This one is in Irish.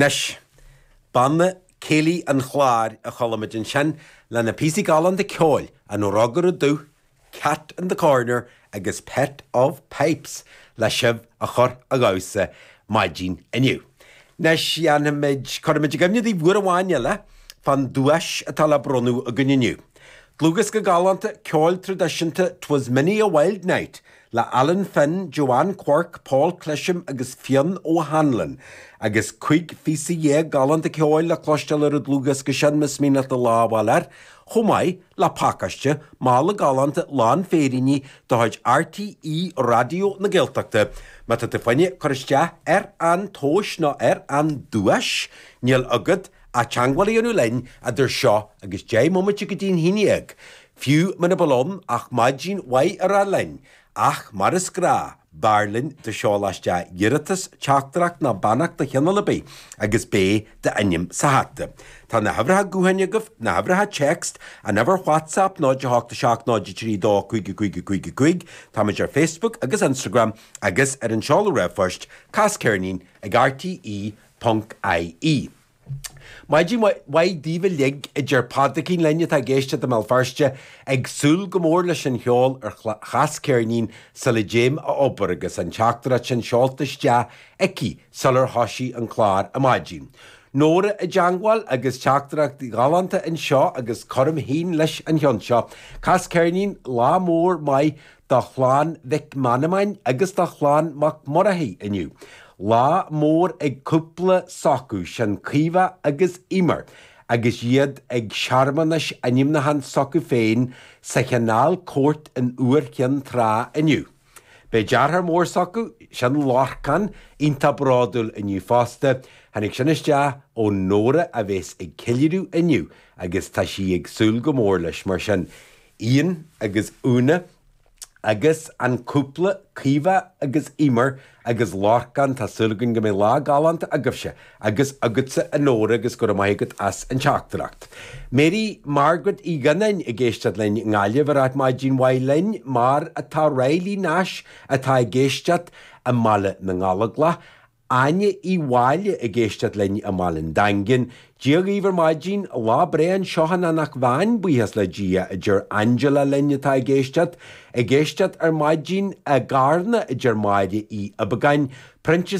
Anois, Banna Céilí an Chláir a chuala muid ansin, lena bpíosaí galánta ceoil, An Rógaire Dubh, Cat in the Corner agus Pet of the Pipers le sibh a chur a dhamhsa maidin inniu. Anois, dhéanfaimid, cuirfimid i gcuimhne daoibh uair amháin eile fán duais atá le bronnadh againn inniu. Dlúthdhiosca galánta ceoil traidisiúnta 'Twas Many a Wild Night le Alan Finn, Joanne Quirke, Paul Clesham agus Fionn O'Hanlon, agus cúig phíosa dhéag galánta ceoil le cloisteáil ar an dlúthdhiosca sin, Na Sméara ar fáil air, chomh maith le pacáiste, mála galánta lán féiríní de chuid RTÉ Raidió na Gaeltachta, má tá tú féin ag cur isteach ar an tomhas nó ar an duais, níl agat ach teagmháil a dhéanamh linn idir seo agus deich mbomaite go dtí an haon déag. Fiú muna bhfuil ann ach maidin mhaith a rá linn, Ach mar is gnáth, b'fhearr linn dá seolfá isteach iarratas, teachtaireacht ná beannacht de chineál ar bith, agus beidh d'ainm sa hata. Tá na huimhreacha gutháin agaibh, na huimhreacha text, an uimhir whatsapp 0 8 7 0 3 2 5 5 5 5, táimid ar Facebook agus Instagram, agus ar an seoladh r-phoist, Cas Ceirnín ag RTÉ.ie. Maidin mhaith daoibh uilig, a deir Pádraicín linn atá ag éisteacht i mBéal Feirste, ag súil go mór leis an cheol ar Chas Ceirnín sula dtéim a obair agus an teachtaireacht sin seolta isteach aici sular thoisigh an clár ar maidin. Nóra i dteangmháil agus teachtaireacht ghalánta anseo agus cuirim féin leis an cheann seo. Cas Ceirnín lá mór maith do chlann Mhic Manannáin agus do chlann Mac Murchaidh inniu. Lá mór ag cúpla s'acu sin Caoimhe agus Eimear agus iad ag searmanas ainmniúcháin s'acu féin sa Canal Court in Iúr Chinn Trá inniu. Beidh deartháir mór s'acu sin Lorcán iontach bródúil inniu fosta, tháinig sin isteach ó Nóra a bheas ag ceiliúradh inniu agus tá sí ag súil go mór leis mar sin. Iain agus Úna agus an cúpla Caoimhe agus Emer agus Lorcán, tá súil againn go mbeidh lá galánta agaibhse agus agatsa a Nóra agus go raibh maith agat as an teachtaireacht. Mary Margaret Uí Ghionnáin ag éisteacht linn i nGaillimh ag ráit maidin mhaith linn mar atá Riley Nash atá ag éisteacht i mBaile na nGallóglach Áine Uí Mháille ag éisteacht linn i mBaile an Daingin. Dia dhaoibh ar maidin, lá breá anseo in Anach Mheáin, buíochas le Dia, a deir Angela linn atá ag éisteacht. Ag éisteacht ar maidin, i gCarna, a deir Máire Uí Uibeagáin, Proinsias.